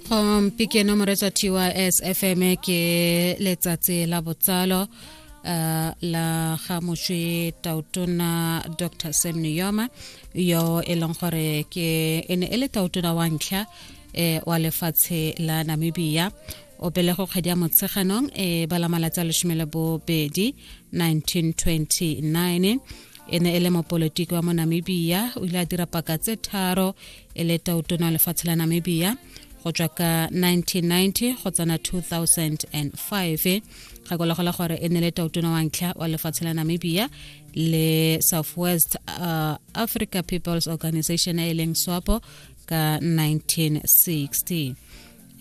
gompieno um, moretsa tys fm ke letsatsi la botsalo uh, la ga moswi tautona dr sam niyoma yo e leng gore ke e ne e le tautona wa ntlha eh, wa lefatshe la namibia o pelego kgwedi ya motsheganong e eh, bala malatsi a lesome le bobedi 1929 e ne e le mopolitiki wa mo namibia o ile a dira paka tse tharo e le tautona lefatshe la namibia go tswa ka 1990 go tsena 2005 ga kolegole gore e ne le tautona wa ntlha wa lefatshe la namibia le southwest uh, africa peoples organization e leng swapo ka 1960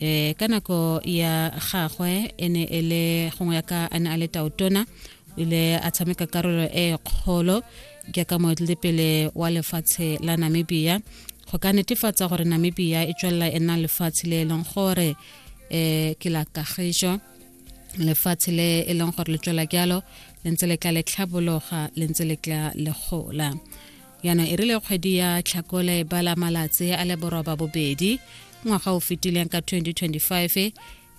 e ka nako ya gagwe e ne e le gongwe ya ka a ne a le taotona o ile a tshameka karolo e kgolo jaaka moetelepele wa lefatshe la namibia go ka netefatsa gore namibia e tswelela e nna lefatshe le e leng gore um ke la kagiso lefatshe le e leng gore le tswela jalo le ntse le tla le tlhabologa le ntse le tla le gola yana e rile kgwedi ya tlhakole e bala malatsi a le boroba bobedi ngwaga o fetileng ka 2025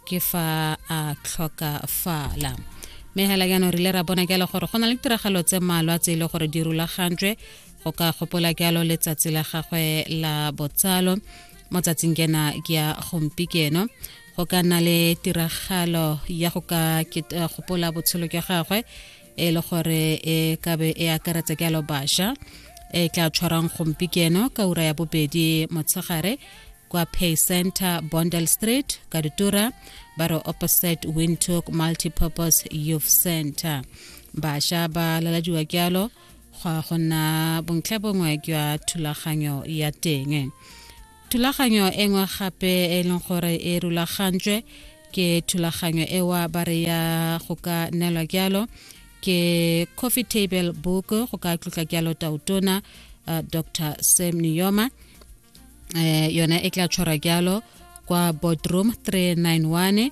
ke fa a tlhokafala mme hela jaanong rile ra bona jalo gore go na le tiragalo tse mmalwa tse e le gore di rulagantswe go ka gopola jalo letsatsi la gagwe la botsalo mo tsatsing kena ke ya gompikeno go ka nna le tiragalo ya go ka gopola botshelo jwa gagwe e le gore e kabe e akaretsa ke alo basha e tla tshwarang gompikeno ka ura ya bobedi motshegare kwa pay center bondel street ka ditura ba re opposite windhoek multipurpose youth center basha ba laladiwa ke alo go a go nna bontlha bongwe jwa thulaganyo ya teng thulaganyo e nngwe gape e leng gore e rulagantswe ke thulaganyo ewa ba re ya go ka nelwa jalo ke coffee table book go ka tlotla jalo tautona uh, dr sam niyoma eh, yona e tla tshwara jalo kwa boardroom 391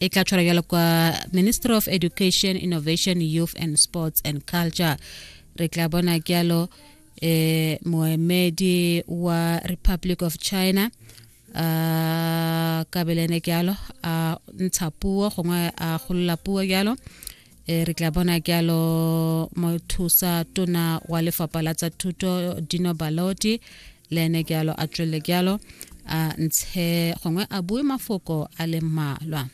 e tla tshwara jalo kwa ministry of education innovation youth and sports and culture re tla bona jalo eh moemedi wa republic of china a kabelene jalo a ntsha puo gongwe a golola puo jalo e re tla bona jalo mothusa tona wa lefapha la tsa thuto dino baloti le ene ke alo a tswelele ke alo a ntshe gongwe a bue mafoko a le mmalwa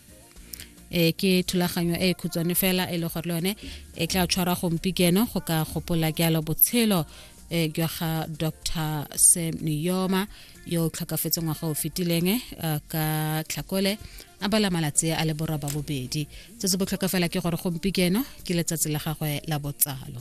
e ke thulaganyo e khutshwane fela e le gore le yone e tla tshwara gompikeno go ka gopola ke alo botshelo e jwa ga dr sam niyoma yo o tlhokafetse ngwaga o fetileng ka tlhakole a bala malatsi a le boroba bobedi se se botlhokafela ke gore gompikeno ke letsatsi la gagwe la botsalo